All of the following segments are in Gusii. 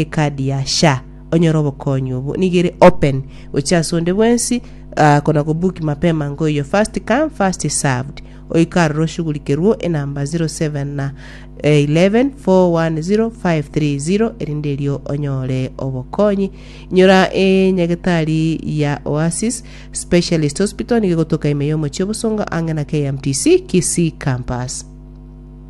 Ekadi ya sha onyore obokonyi obo nigo ere open gochia ase onde bwensi ah, kona go book mapema ngo iyo first come first served oiko aroro oshugurikerwo enamba 07 na eh, 11 410 530 erinde erio onyore obokonyi inyora enyagetari ya Oasis Specialist Hospital nigo egotoka ime y'omochie obosongo ang'e na KMTC Kisii campus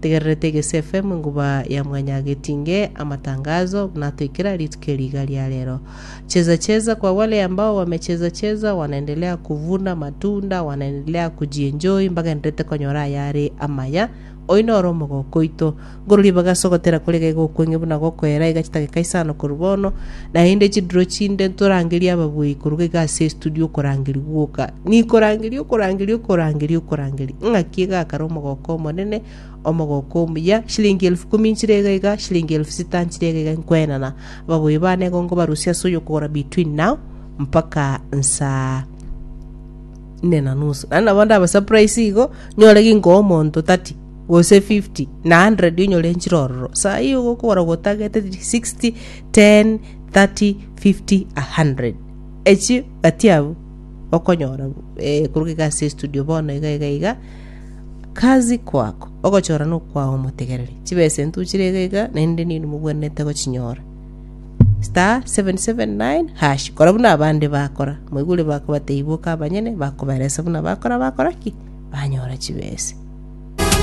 Tegererete egesefe mwenguba ya mwanyagetinge amatangazo, buna toikera rituko eri iga ria rero. Cheza cheza kwa wale ambao wamecheza cheza, wanaendelea kuvuna matunda, wanaendelea kujienjoy, mbagenderete konyora ayare amaya. Oyi noro omogoko oito. Ngororia bagase ogotera kore iga iga okwenge buna gokoera iga chidakika isano korwa bono. Naende chidiro chinde ntorangerie ababuei koruga iga ase estudio okorangeria gwoka. Nikorangeria, okorangeria, okorangeria, okorangeria. Ng'aki egakara omogoka omonene, omogoka omuya, shilingi elfu kumi nchire iga iga, shilingi elfu sita nchire iga iga nkoenana. Ababuei bane igo nkobarusia ase oyokogora between now mpaka nsaa nne na nusu naende nabo ndaba surprise igo nyore ginkoa omonto 30 gose 50 na 100 onyore nchire ororo saa hii ogokora gotagete 60 10, 30, 50, 100. Echi batiabu okonyora eh, kuruga iga ase studio bono iga iga iga kazi kwako ogochora nokwao omotegereri chibesa entu chire iga iga naende nini mogwenerete gochinyora star 779 hash kora buna abande bakora moigure bakobata ibuka abanyene bakoberesa buna bakora bakora ki banyora chibesa